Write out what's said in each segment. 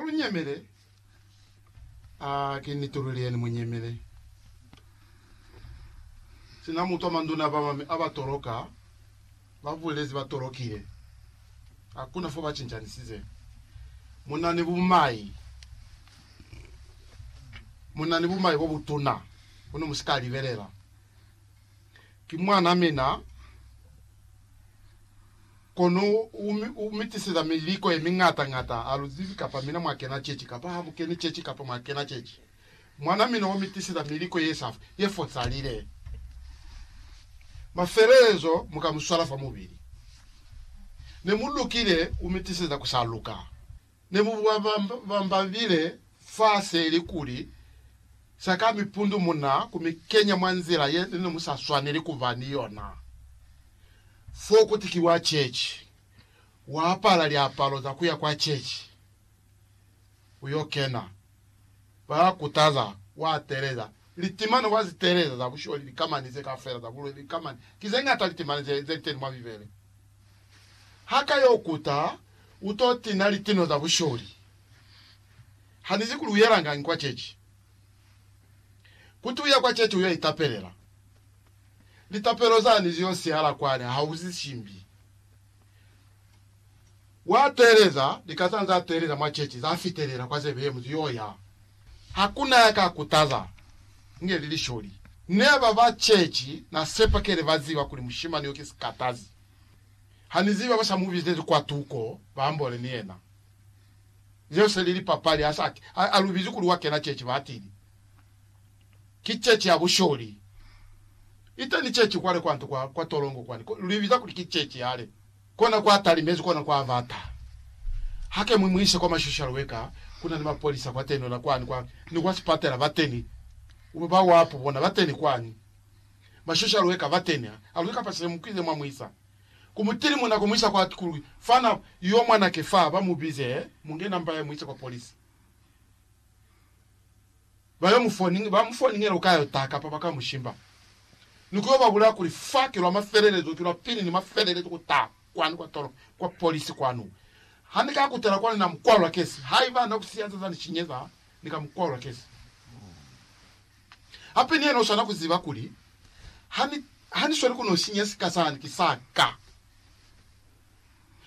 Lu nyemele, a ki ni tululeni mu nyemele. Sina mutwa manduna ba mami a ba toloka, ba bulezi ba tolokile. Hakuna fo ba cincanisize. Mu na ni bumai. Mu na ni bumai bo butuna, kono mu si ka libelela. Ki mwan'a mina, kono u, u mi tiseza miliko ye miñata-ñata, ha lu zibi kapa mina mwa kena ceci kapa ha mu keni ceci kapa mwa kena ceci. Mwan'a mina wa mi tiseza miliko ye sa, ye fosalile. Mafelelezo mu ka mu swala fa mubili. Ne mu lukile, u mi tiseza ku sa luka. ne mu bambabile fa se li kuli, Sa ka mi pundu mu na ku mi kenya mwa nzila ye ne mu sa swaneli ku ba ni yona. Fo ku tikiwa chechi, wa apala liapalo za ku ya kwa chechi, u yo kena. ba kutaza wa telela litimano wa zi telela za busholi likamani ze kafela za bulwele likamani ki ze ngata litimani ze ze liteni mwa bibele ha ka yo kuta u to tina litino za busholi ha ni zi kuli u yelangangi kwa chechi kuti u ya kwa chechi u yo itapelela litapelo zani zi yo sihala kwani ha u zi shimbi Wa teeleza, lika za za teeleza mwa chechi, za fitelela kwa zebe ye muzi yo ya. Ha ku na ya ka kutaza, inge li lisholi. Ne ba ba chechi, na sepa kele ba ziba kuli mushimani yo ki sikatazi. Ha ni ziba ba sa mu bizezi kwa tuko, ba ambole ni yena. Zeo se li lipapali, ha sa, ha, ha lu bizi kuli wa kena chechi, ba tili. Ki chechi ya busholi. Iteni chechi kwale kwanto kwa, kwa tolongo kwani, ko, lu ibiza kuli ki chechi yale. Kona kwa talimezi, kona kwa bata. Hake mwi muise kwa mashoshalo we ka, kuna ni mapolisa kwateni, ona kwani kwa, ni kwa sipatela bateni, uba ba wapu bona bateni kwani, mashoshalo we ka bateni, ha, ha luli kapasile mukize mwa muisa ku mutili muna ku muisa kwa ku lwi, fana yo mwanake fa, ba mubize, he, mungena mba ye muise kwa polisi. ba yo mu foni, ba mu foningela uka yo ta kapa ba ka mu shimba, ni ku yo ba bulaya kuli fa ki lwa mafelelezo, ki lwa pili ni mafelelezo ku ta kwani kwa tolo, kwa polisi kwanu. Ha ni ka kutela kwani na mu kwalula kesi, haiba na ku siyanza za ni shinyeza, ni ka mu kwalula kesi. Hape ni yena u swana ku ziba kuli ha ni, ha ni sweli ku no sinya sika sani, ki sa ka.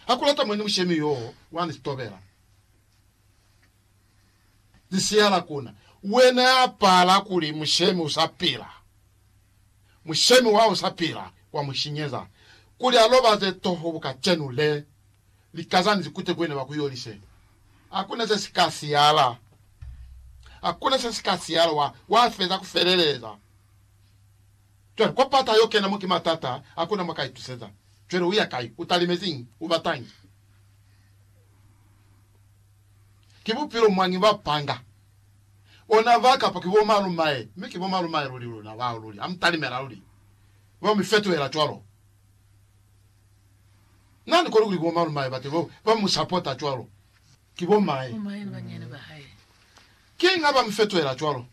Ha ku lata mwe ni mushemi yoo wa ni sitobela. Lisihala kuna. Wena ya pala kuli mushemi u sa pila, mushemi wa u sa pila, wa mu shinyeza, kuli a lobaze toho bu kacenu le, likazani zikute ku yena ba ku yolise. Hakuna se si ka sihala. Hakuna se si ka sihala. Wa, wa feza ku feleleza. Cwale, kwa pata yo kena mo ki matata, hakuna mwa ka ituseza. Cwale u ya kai? U talimeziñi? U batañi? Ki bupilo mwañi ba panga? Ona ba kapa ki bo malumae, mi ki bo malumae luli luna bao luli, ha mu talimela luli, ba mi fetuhela cwalo. Na ni koni kuli ki bo malumae bate bao ba mu sapota cwalo, ki bo mae. Kiñi ha ba mi fetuhela cwalo?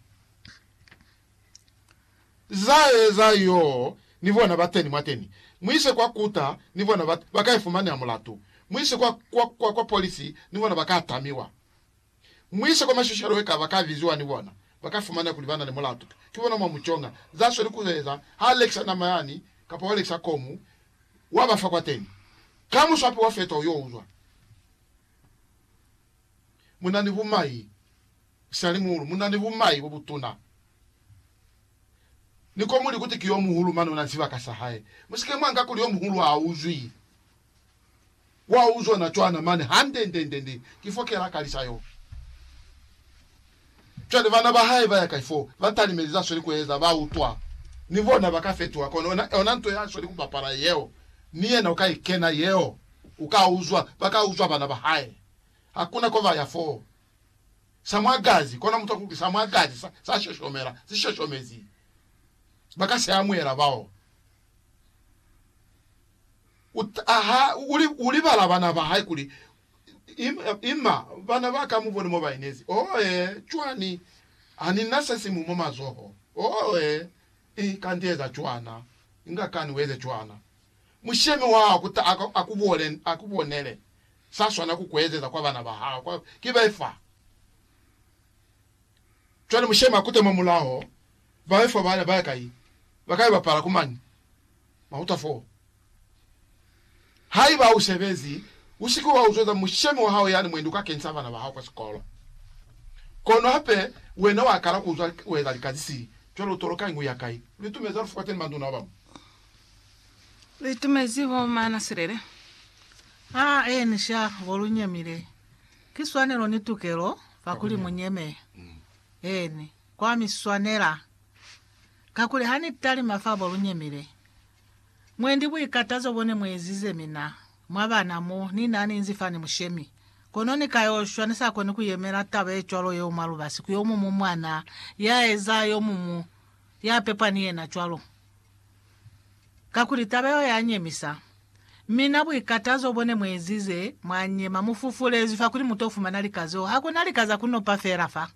Za eza yoo ni bona ba teni mwateni. Mu ise kwa kuta ni bona ba, ba ka ifumaneha mulatu. Mu ise kwa, kwa, kwa, kwa polisi ni bona ba ka tamiwa. Mu ise kwa mashoshalo weka ba ka biziwa ni bona. Ba ka fumaneha kuli ba na ni mulatu. Ki bona mwa mu conga. Za sweli ku eza, ha a lekisa nama yani, kapa wa lekisa komu, wa ba fa kwateni. Ka muswapi wa fetoho yo uzwa. mu na ni bumai, sali muulu, mu na ni bumai bo butuna. Ni ko mu li kuti ki yo muhulu mane u na ni sibaka sa hae. Mu si ke mwa nga kuli yo muhulu ha a uzwi. Wa uzwa na cwana mane, hande nde, nde, nde. Ki fo ke la kalisa yo. Cwale bana ba hae ba ya kai fo ba talimeli za sweli kueza? Ba utwa ni bona ba ka fetuha. Kono ona, ona nto ya sweli kubapala yeo, ni yena u ka i kena yeo. U ka uzwa, ba ka uzwa bana ba hae. Hakuna ko ba ya fo. Sa mwa gazi, kona mutwa kuli sa mwa gazi sa, sa shoshomela, si shoshomezi. Ba ka si amuhela bao. U ta, ha, u, u libala bana ba hae kuli Ima, ima, bana ba ka, mubone mo ba inezi. Oe, cwani, ha ni na se simu mwa mazoho. Oe, i, kanti eza cwana. Inga kani ueze cwana. Mushemi wa hao kuta a, a ku bole, a ku bonele. Sa swana ku kuezeza kwa bana ba hao, kwa, ki be fa. Cwale mushemi a kute mwa mulaho, ba be fa, ba, ba ya kai? Ba ka yo bapala ku mani? Mwa uta foo. Haiba u sebezi, u si ke wa uzweza mushemi wa hao yani mwendi kakeni sa bana ba hao kwa sikolo. Kono hape, wena wa kala ku uzwa u eza lika ze sili. Cwale u toloka ingu ya kai? Lu itumezi halufu kateni manduna ba bañwi. Lu itumezi bo mana silele. A enisha bo lu nyemile. Ki swanelo ni tukelo fa kuli mu nyeme. Eeni, kwa mi swanela. Kakuli ha ni talima fa bo lu nyemile. Mwendi buikatazo bone muezize mina, mwa bana mo ni na ninzi fani mushemi. Kono ni ka yo shwa, ni sa koni ku yemela taba ye cwalo yeo mwa lubasi ku yomumu mwana ya eza yomumu ya pepwa ni yena cwalo. Kakuli taba yeo ya nyemisa. Mina buikatazo bone muezize, mwa nyema, mu fufulezwi fa kuli mu to fumana lika zeo. Hakuna lika za ku nopa fela fa.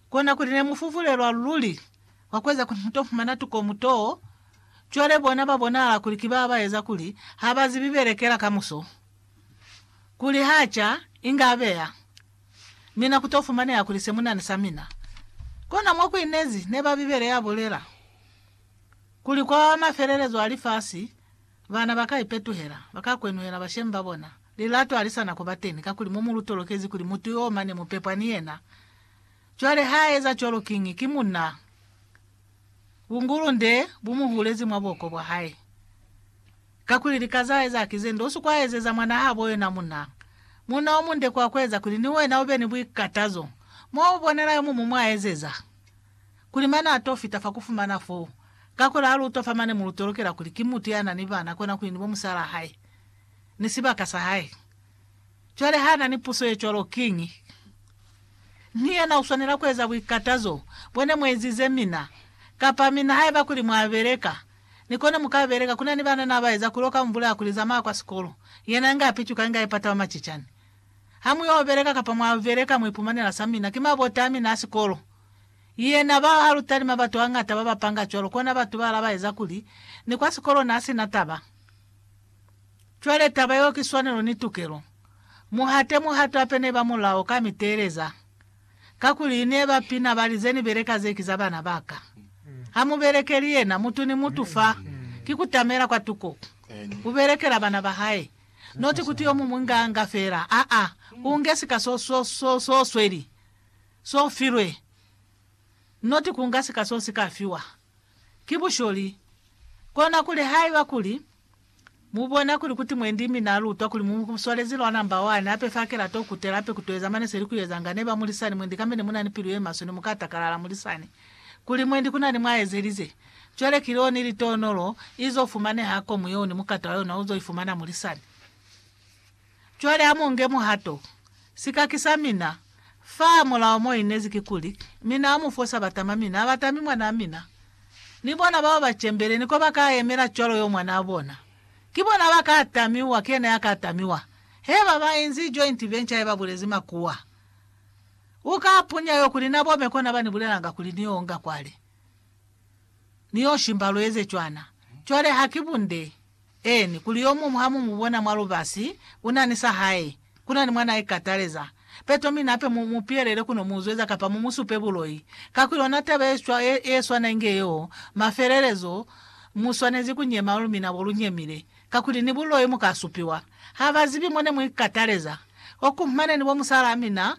Kona kuli ne mu fuvulelwa luli kwa kueza kuli muto fumana tukomu too, cwale bona ba bonahala kuli ki ba ba eza kuli ha ba zibi belekela kamuso. Kuli ha ca, inge abeya mina ku to fumaneha kuli se munani sa mina. Kona mo ku inezi neba Bibele ya bulela, kuli kwa mafelelezo a lifasi, bana ba ka ipetuhela, ba ka kwenuhela bashemi ba bona. Lilato halisana kuba teni, kakuli mo mu lutolokezi kuli mutu yoo mane mu pepwa ni yena. Cwale ha eza cwalo kiñi? Ki munna. Bungulunde bu mu hulezi mwa buoko bwa hae. Kakuli lika za eza ki ze nde usi kwa ezeza mwanaa habo yona munna. Munna o munde kwa kueza kuli ni wena ube ni buikatazo. Mo u bonela yo mumu mwa ezeza, kuli mane a to fita fa ku fumana foo, kakuli ha lu utwa fa mane mu lutolokela kuli ki mutu ya na ni bana, kona kuli ni bo musalaa hae. ni sibaka sa hae. Cwale ha na ni puso ye cwalo, kiñi? Ni yena u swanela ku eza buikatazo bwa ne mu ezize mina, kapa mina haiba kuli mwa beleka, ni kone mu ka beleka. Ku na ni banana ba eza kulo ka mvula ya ku lizamaya kwa sikolo, yena inge a picuka, inge a ipata wa macicani. Ha mu yo beleka kapa mwa beleka, mu ipumanela sa mina. Ki mabota a mina a sikolo. Yena bao ha lu talima batu hangata ba ba panga cwalo, kona batu ba la ba eza kuli ni kwa sikolo na si na taba. Cwale taba yeo ki swanelo ni tukelo. Muhate muhato hape neba mulao ka miteeleza. Kakuli neba pina bali, Ze ni beleka ze ki za bana ba ka. Ha mu belekeli yena, mutu ni mutu fa. Ki kutamela kwa tuko. U belekela bana ba hae. Noti kuti yo mumwi nga, nga fela. Aa, u nge sika so, so, so, so sweli, so filwe. Noti ku nga sika so si ka fiwa. ki busholi. Kona kuli haiba kuli mu bona kuli kuti mwendi mi na lutwa kuli mu swalezi lwa namba wani, hape fa kela to kutela, hape ku to eza mane se li ku ezanga, neba mulisani mwendi kambe ne muna ni pilu ye maswe, ne mu ka takalala mulisani kuli mwendi kuna ni mwa ezelize. Cwale ki leo ni litonolo izo fumaneha ko muyeo ni mukata wa yona uzo ifumana mulisani. Cwale amonge muhato, sikaki sa mina, fa mulao mo inezi kikuli, mina amufosa batama mina abatami mwanaa mina. Ni bona bao ba cembele ni koba ka yemela cwalo yo mwanaa bona. Ki bona aba ka tamiwa, ki yena ya ka tamiwa. He ba ba inzi joint venture ye ba bulezi makuwa. U ka punya yo kuli na bome kona ba ni bulelanga kuli ni yo onga kwale. Ni yo shimba lu eze cwana. Cwale ha ki bunde. Eeni, kuli yomuñwi ha mu mu bona mwa lubasi, u na ni sa hae, ku na ni mwa n'a ikataleza, peto mi nape mu mu pihelele ku no mu zweza kapa mu mu supe buloi. Kakuli ona taba ye cwa ye, ye swana inge yeo, mafelelezo, mu swanezi ku nyema lu mina bo lu nyemile, kakuli ni buloi mu ka supiwa. Ha ba zibi mo ne mu ikataleza. Oku, mane ni bo musalaa mina,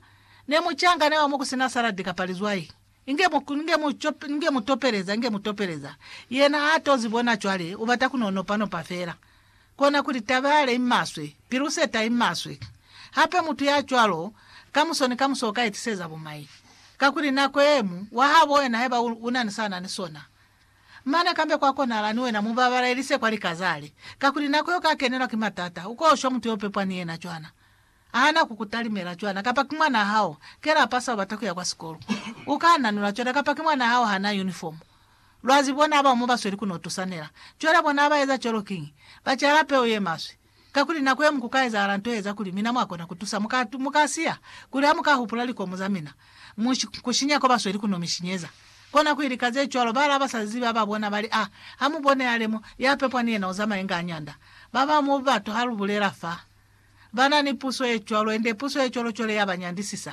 ne mu cangane wa mo ku si na saladi kapa lizwai. Inge mu, inge mu, inge mu topeleza, inge mu topeleza. Yena a tozi bona cwale, u bata ku no nopa nopa fela. Kona kuli, Taba yale i maswe. Piluseta i maswe. Hape mutu ya cwalo, kamuso ni kamuso uka itiseza bumai. Kakuli nako yemu, wa habo wena haiba u, una ni sa na ni sona. Mane kambe kwa konahala ni wena mu babalelise kwa lika zale. Kakuli nako yo ka kenelwa ki matata, uko shwa mutu yo pepwa ni yena cwana. Ahana ku ku talimela cwana kapa ki mwanaa hao ke lapa sa ubata kuya kwa sikolo. U ka nanula cwana kapa ki mwanaa hao hana uniform. Lwazi bona aba umo basweli ku no tusanela. Cwale bona aba eza cwalo kiñi? Ba cala peu ye maswe. Kakuli nako yeñwi ku ka ezahala nto ye eza kuli mina mwa kona ku tusa. Mu ka, mu ka siya kuli ha mu ka hupula likomu za mina. Mu kushinya ko ba sweli ku no mi shinyeza. Kona ku ili ka ze cwalo, ba la ba sa zibi ba ba bona, ba li, A ha mu bone ale mo, ya pepwa ni yena u zamaye nga nyanda. Ba ba mu batu ha lu bulela fa, ba na ni puso ye cwalo, ende puso ye cwalo cwale ya ba nyandisisa.